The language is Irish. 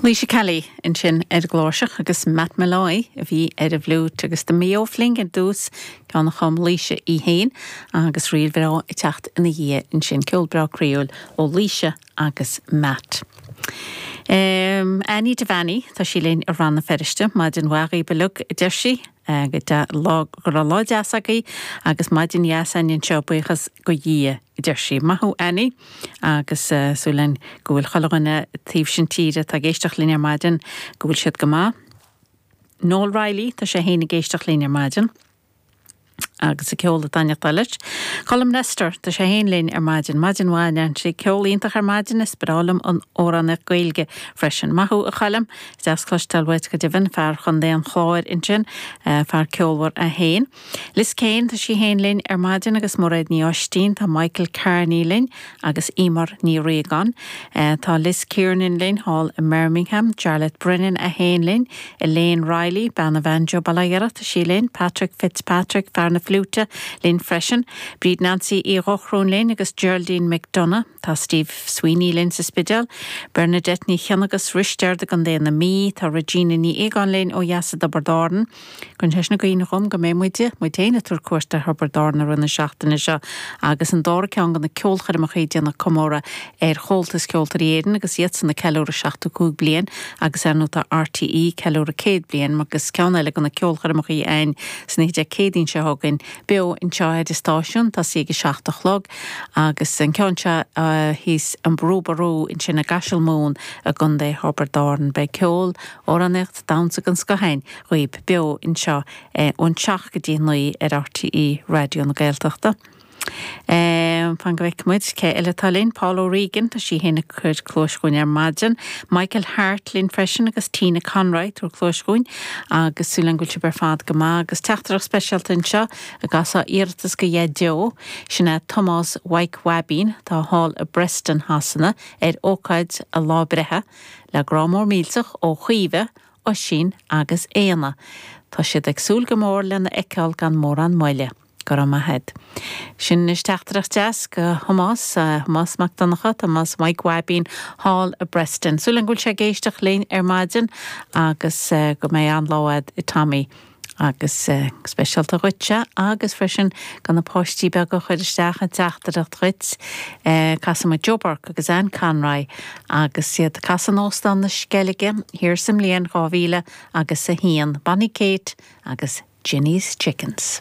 Laoise Kelly ansin ar an gcláirseach agus Matt Molloy a bhí ar an bhfliúit agus The Mayo Fling ar dtús, ceann a chum Laoise í féin agus ríl bhreá ag teacht ina dhiaidh ansin, ceol breá croíúil ó Laoise agus Matt. Annie Devaney, tá sí linn i Rann na Feirste, maidin mhaith ó Bhéal Leice a deir sí, go raibh lá deas agaibh agus maidin dheas againn anseo, buíochas do Dhia. a deir sí. Maith thú Annie agus súil linn go bhfuil chuile dhuine an taobh sin tíre atá ag éisteacht linn ar maidin go bhfuil siad go maith. Noel Reilly, tá sé fhéin ag éisteacht linn ar maidin agus an ceol ag taitneachtáil leis. Colm Lester, tá sé fhéin linn ar maidin. Maidin mhaith a Neansaí. Ceol iontach ar maidin, is breá liom an amhránaíocht Gaeilge freisin. Maith thú a Choilm, is deas cloisteáil uait go deimhin, fear chontae an Chláir ansin, fear ceolmhar é fhéin. Liz Kane, tá sí féin linn ar maidin agus Mairéad Ní Oistín, tá Michael Carney linn agus Eimear Ní Riagáin. Tá Liz Kiernan linn thall i mBirmingham, Jarlath Brennan é fhéin linn, Elaine Riley, bean an bhanjo, bail ó Dhia uirthi, tá sí linn, Patrick Fitzpatrick, fear na fliúite, linn freisin. Bríd Nancy Uí Dhochrúin linn agus Geraldine McDonagh. Tá Steve Sweeney linn sa Spidéal, Bernadette Ní Chionna agus Risteard i gContae na Mí. Tá Regina Ní Fhiagáin linn ó dheas i dTiobraid Árann. Cuireann sé sin i gcuimhne dhom go mbeidh muide, muid féin, ag tabhairt cuairt ar Thiobraid Árann i rith na seachtaine seo agus an dara ceann de na ceolchoirmeacha ag déanamh comóradh ar Chomhaltas Ceoltóirí Éireann agus iadsan ag ceiliúradh 75 bliain agus ar ndóigh tá RTÉ ag ceiliúradh 100 bliain agus ceann eile de na ceolchoirmeacha a'ainn sin oíche Dé Céadaoin seo chugainn beo anseo ar an stáisiún, tosaí ag 7 a chlog agus an ceann seo thíos, An Brú Ború, ansin i gCaiseal Mumhan i gContae Thiobraid Árann. Beidh ceol. amhránaíocht, damhsa den scoth againn dhaoibh beo anseo ón seacht go dtí naoi ar RTÉ Raidió na Gaeltachta. Fan go bhfeicfidh muid cé eile atá linn, Paul O'Regan, tá sé fhéin ag cur cluais orainn ar maidin, Michael Harte linn freisin agus Tina Conroy, ag cur cluais orainn agus súil againn go bhfuil sibh ar fad go maith agus teachtaireacht speisialta anseo ag casadh iarratas go Dhaideo, sin é Tomás Mhaidhc Bhaibín atá thall i bPreston, Sasana, ar ócáid a lá breithe. Le grá mór millteach ó Chaoimhe, Oisín agus Éanna. Tá siad ag súil go mór lena fheiceáil gan mórán moille. Go raibh maith agat. Sin anois teachtaireacht deas go Thomás, Tomás Mac Donncha, Tomás Mhaidhc Bhaibín thall i bPreston. Súil agam go bhfuil sé ag éisteacht linn ar maidin agus go mbeidh an-lá agat a Tommy. agus speisialta dhuitse agus freisin go na páistí beaga a chuir isteach an teachtaireacht dhuit. Casfaidh muid Joe Burke agus Anne Conroy agus iad ag casadh in Óstán na Sceilge thiar sa mbliain dhá mhíle agus a haon. Bonny Kate agus Jenny's Chickens.